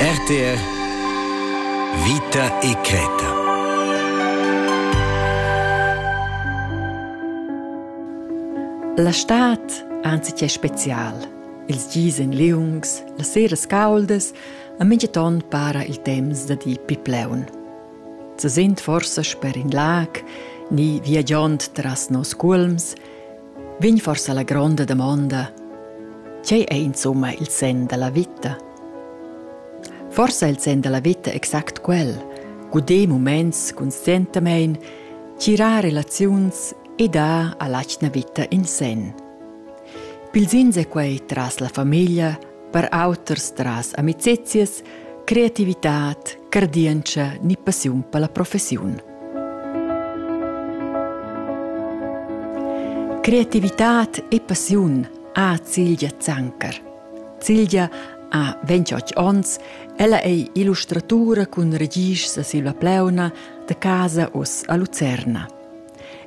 RTR Vita e creta. La stad anzi che special. Ils gis en liungs, las seras cauldas, a mintgaton para il temps da di pipleun. Ze sind forsa sper in lag, ni viagiond tras nos culms, Vegn forsa la gronda damonda, tgei ei insumma il senn dalla vita? Forsa il senn dalla vita exact quel, guder muments conscientamein, tirar relaziuns e dar all'atgna vita in senn. Pils ins è quei tras la famiglia, per auters tras amicizias, creativitad, cardientscha ni passiun per la professiun. Creativitad e passiun ha Cilgia Zanker. Cilgia ha 28 onns, ella è illustratura cun registra Silva Pleuna da casa oz a Lucerna.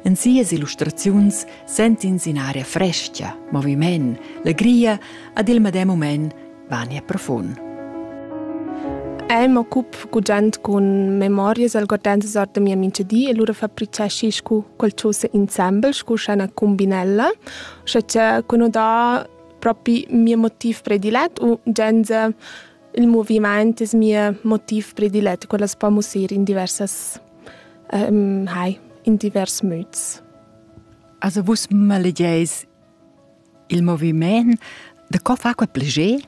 En sias illustraziuns sent'ins in aria fresca, moviment, legria ad il medem moment vania profund. El m'occup gugent cun memorias algordentas ord da mia mincha di e lura fabriceschis cu qualchosa insembel scu scha üna cumbinella, scha cha cun ho dà propi mia motiv predilet u genza il movimaint es mia motiv predilet, quella as po mussir in diversas um, hai, in divers müts. Also vus malegeis Il moviment de co fa quei pleger?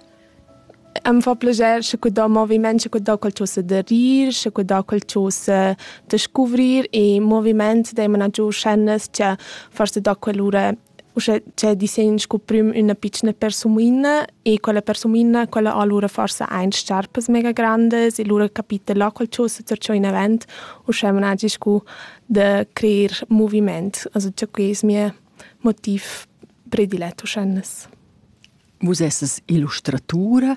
Am fa pleger sche que da moviment, sche que da quel chose de rir, sche que da quel chose de scuvrir e moviment deimana giù scene che forse da quell'ora uschè c'è disegn sco prim üna piccina persuina e quella persuina quella allura forse ein scarpas mega grandes e lura capite là quel chose per ciò in event uschè managi sco de creer moviment also già que es mia motiv predilet uschennes. Vus esses illustratura.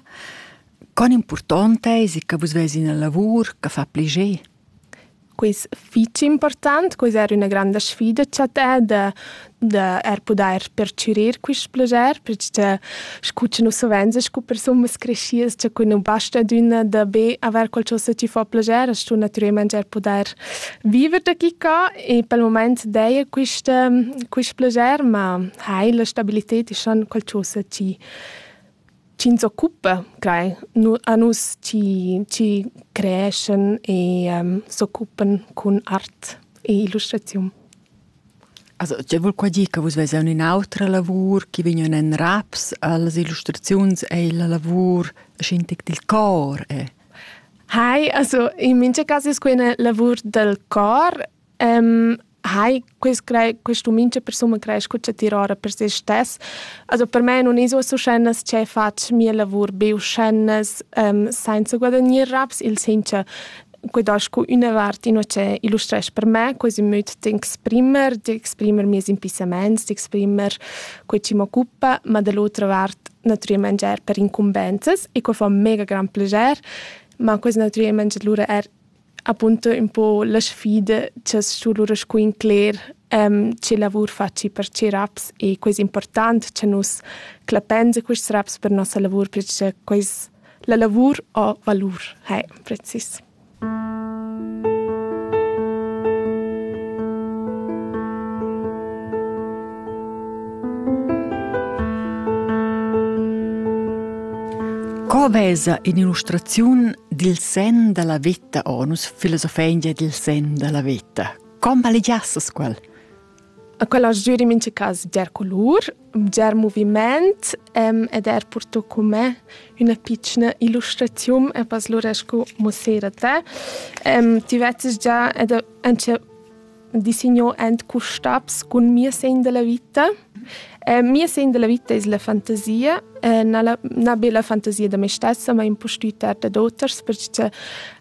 Con important eis che vus veis ina lavur che fa pliger? Quis fitg important, quis era üna granda sfida cha te da, da er pudair percürir quist plager, perche scu cha nus savenza scu persunas creschidas cha cun nu basta d'üna da be avair qualchosa chi fa plager as stu natürelmaing eir pudair viver da chi ca e pel mumaint daja quist quist plager, ma hai la stabilited e schan qualchosa chi chi ins occupa crai a nus chi chi creeschan e s'occupan cun art e illustraziun. Also, tg'ei vul qua dir che vus veis aunc in'autra lavur chi vegnan en raps allas illustraziuns ei la lavur sc'intec dil cor è? Hai, also in mincha cas es quei üna lavur dal cor. Ehm, hai, quest crei, questa mincha persuna creescha cha tira ora per se stess. Also per me nun es uossa uschennas che fatsch mia lavur be uschennas, ehm, sainza guadagnir raps, il sincha quedà scu üna vart inua che illustresch per me quai sun müt d'exprimer, d'exprimer mieus impissamaints, d'exprimer quai chi m'occupa, ma da l'otra vart natüralmaing eir per incumbenzas e quai fa mega grand plaschair, ma quels natüralmaing lura eir appunto ün po la sfida cha's stu lura scu incler che lavur faci per che raps e quai es important cha nus clappains a quists raps per nossa lavur perche quels La lavur ha valur, hai precis. Co vesa in illustraziun dil sen dalla veta onus filosofengia dil sen dalla veta? Com valegiassas quel? A quella giür in mincha cas bger culur, bger muvimaint ed eir purto cun me üna pitschna illustraziun e pas lura scu muossera te. Ti vezzast già ed auncha disigno ant cu stabs cun mia segn da la vita. Mia segn da la vita es la fantasia, na be la fantasia da me stessa, ma impustüt er dad oters perche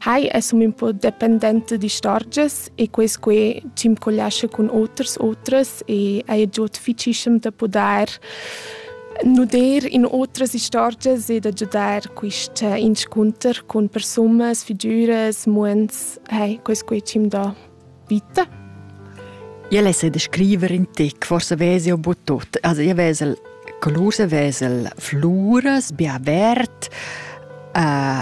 hai es ün po dependent d'istorgias e quest que ch'imcollascha cun oters otras e haja giot ficischem da pudair nuder in otras istorgias e da giudar quist eh, inscunter cun persunas, figüras, muonds, hey, quest que ch'im dà vita. Io lesse descrivere in te, forse vesi un po' tutto. Also io vesel color, vesel flores, bien vert, uh,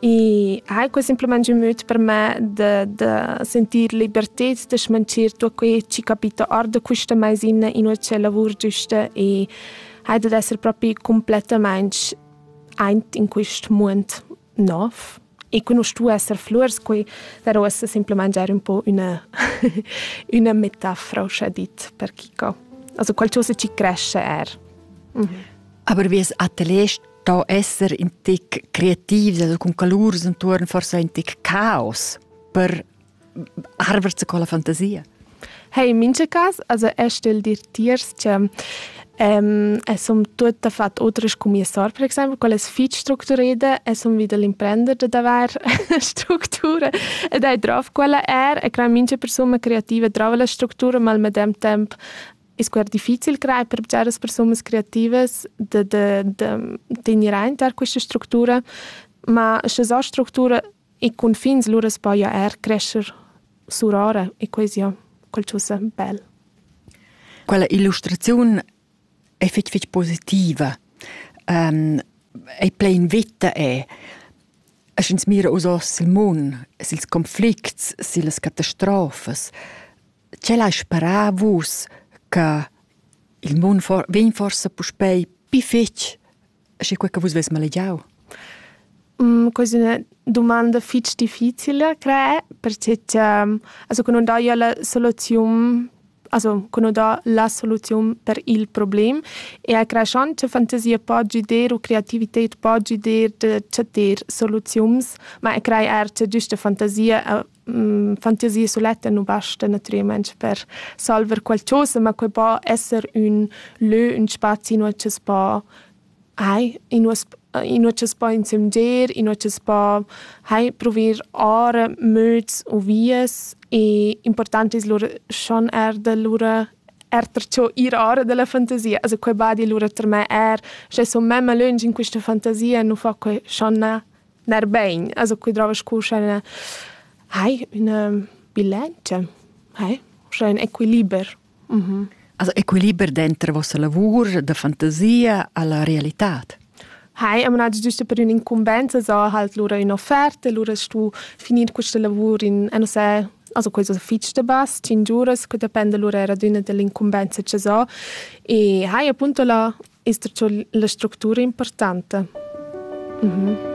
E hai quei semplamein giu möd per me da, da sentir libertad, da schmanchir tutto quei che capita or da questa maisina in ucce lavur giusta e hai da essere proprio completamente eint in quest mund nov. E qui non stu esser flurs, qui darò esse semplamein giar un po una, una metafora, uscia dit, per chi co. Also qualcosa ci cresce er. Mm -hmm. Aber wie es Ateliers da esser in tic creativ, cun calurs intorno forse ein tic caos per arverse con la fantasia. Hey, in mince cas, also er stell dir tiers che Um, es um tutto fatto otras come sor, per esempio, quelle fich strukturierte, es um wieder l'imprender de davar strutture ed hai drauf quella er e crea mince persone creative drauf la struttura, ma al medem temp E scuer difficil crai per bgeras persunas creativas de, de, de tenir aint er questa structura, ma sche sa structura e confins lura spoia er crescer surora e quasi ja qualcosa bel. Quella illustrazione è fitch fitch positiva. Um, è plein vita è. Es ins mira us os il mun, sils conflicts, sils catastrofes. Tgel hai sperà vus che il mund for vegn forsa puspei pli fetg sche quei che vus veis malegiau? Quasi üna dumanda fitg difficile, cre, perche cha also che non daja la soluziun also che non dà la soluziun per il problem e a creschand cha fantasia po giuder u creativited po giuder da chattar soluziuns, ma e crei eir cha güsta fantasia fantasia suletta nu basta natüralmaing per salver qualchosa, ma quai po esser ün lö, ün spazi inua chi's po hai, inua inua chi's po insömgir, inua chi's po hai pruver ora möds u vias e important es lura schon eir da lura erter cho ir ora da la fantasia. Also quai badi lura ter me eir, sche sun memma lönch in quista fantasia, nu fa quai schon na Ner bein, also qui drova scu sch'el hai üna bilantscha, hai, scha ün equiliber. Mm -hmm. Also equiliber denter vossa lavur da fantasia alla realitad. Hai, am nada giusto per un'incumbenza, so halt lura un'offerta, lura stu finir questa lavur in, eh, non so, also questo fitch de bas, 5 giuras, che depende lura era d'una dell'incumbenza che so, e hai appunto la, la struttura importante. Mm -hmm.